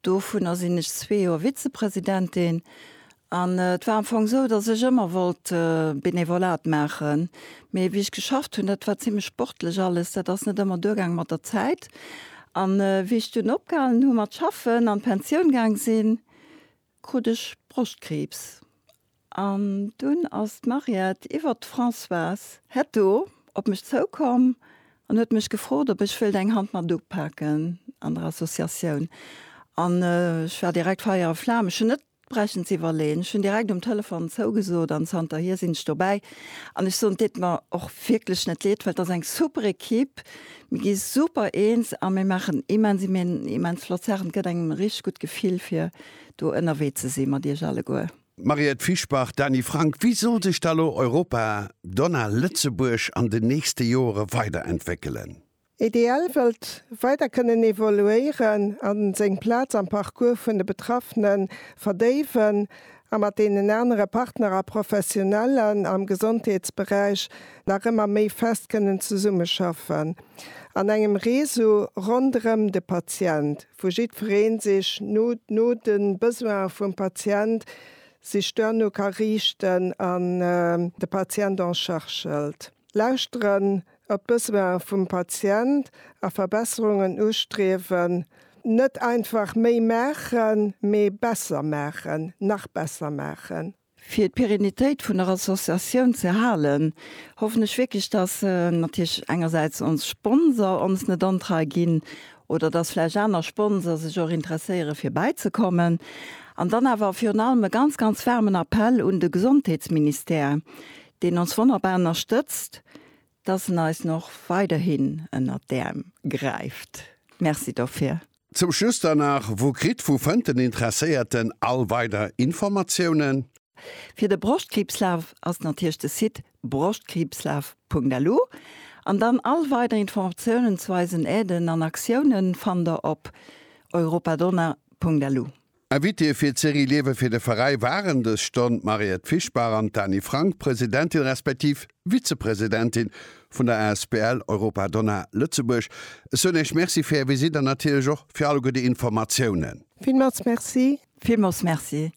Dovunner sinn ech zwee Joer Vizepresidentin. An et war am Fong esou, datt ech ëmmer wollt Benevolat maachen. Mee wéi ech geschafft hunn, dat war zimlech sportlech alles, dat ass net ëmmer duergaang mat der Zäit. An wéi ech dunn opgehalen hu mat schaffen an d'Pensioun gaang sinn, krut ech Broschtkriibs. An dunn ass d'Mariette iwwert d'Françoise Hetto op mech zoukomm an huet mech gefrot, ob ech wëilt eng Hand mat upaken an der Associatioun. An ech war direkt Feier a Flam, ech hunn net brechen ze iwwerleeën, ech hunn direkt um Telefon zougesot an zanterhier sinn ech dobäi. An ech soen, et deet mer och wierklech net leed, well et ass eng super Ekipp, mir gi super eens a mir maachen immens immens flott Saachen. Et gëtt engem e richteg gutt Gefill, fir do ënnerwee ze si mat Iech alleguer. Mariette Fischbach, Dany Frank, wéi soll sech da lo Europa, Donna, Lëtzebuerg an den nächste Joere weiderentwéckelen? EDL wëllt weider kënnen evoluéieren a seng Plaz am Parcours vun de Betraffene verdéiwen a mat deenen anere Partner a Professionellen am Gesondheetsberäich nach ëmmer méi fest kënnen zesummeschaffen an engem Réseau ronderëm de Patient. wou jiddweree sech no no de Besoine vum Patient sech duerno ka riichten an de Patient en charge hëlt. Lauschteren op d'Besoine vum Patient a Verbesserungen ustriewen, net einfach méi maachen, mee besser maachen, nach besser maachen. Fir d'Pérenitéit vun der Associatioun ze halen, hoffen ech wierklech, dass natierlech engersäits ons Sponsor ons net ontrei ginn oder dass vläicht aner Sponsor sech och interesséiere fir bäizekommen. An dann awer virun allem e ganz, ganz waarmen Appell un de Gesondheetsministère, deen ons wonnerbar ënnerstëtzt, dass en eis och weiderhin ënnert d'Äerm gräift. Merci dofir. Zum Schluss dann nach, Wou kritt, wou fënnt den Interesséierten all weider Informatiounen? Fir de Broschtkriibslaf ass natierlech de Site broschtkriibslaf.lu an dann all weider Informatiounen zu eisen Aiden an Aktiounen fannt der op europadonna.lu. Invitéë fir d'Serie Liewe fir de Veräi waren dës Stonn d'Mariette Fischbach an d'Dani Frank, Presidentin respektiv Vizepresidentin vun der Asbl Europa Donna Lëtzebuerg. Ech soen Iech Merci fir Är Visite an natierlech och fir alleguer déi Informatiounen. Villmools Merci. Villmools Merci.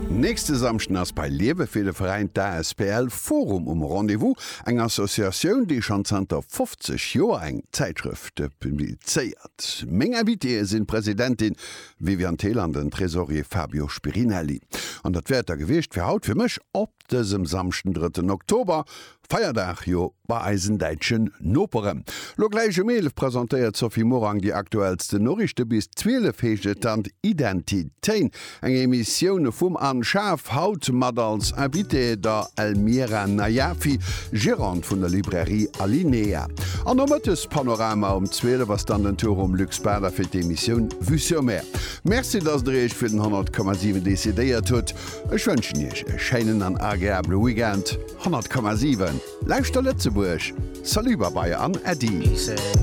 Nächste Samschden ass bei Liewe fir de Veräin d'Asbl Forum um Rendez-vous, eng Associatioun, déi schonn zanter 50 Joer eng Zäitschrëft publizéiert. Meng Invitéeë sinn d'Presidentin Viviane Thill an den Tresorier Fabio Spirinelli. An dat wäert der gewiescht fir haut fir mech op dësem Samschden, drëtten Oktober, Feierdag jo bei eisen däitsche Noperen. Lo gläich um 11 presentéiert d'Sophie Morang déi aktuellsten Noriichte. Bis 12 heescht et dann Identitéin Eng Emissioun vum Anne Schaaf, haut mat als Invitée der Elmira Najafi, Gérante vun der Librairie Alinea. An nomëttes Panorama um 12 ass dann den Tour um Luc Spader fir d'Emissioun Vue sur Mer. Merci, dass der Iech fir den 100,7 decidéiert hutt. Ech wënschen Iech e schéinen an agreabele Weekend. 100,7, Lauschter Lëtzebuerg! Salut, Babai an Äddi!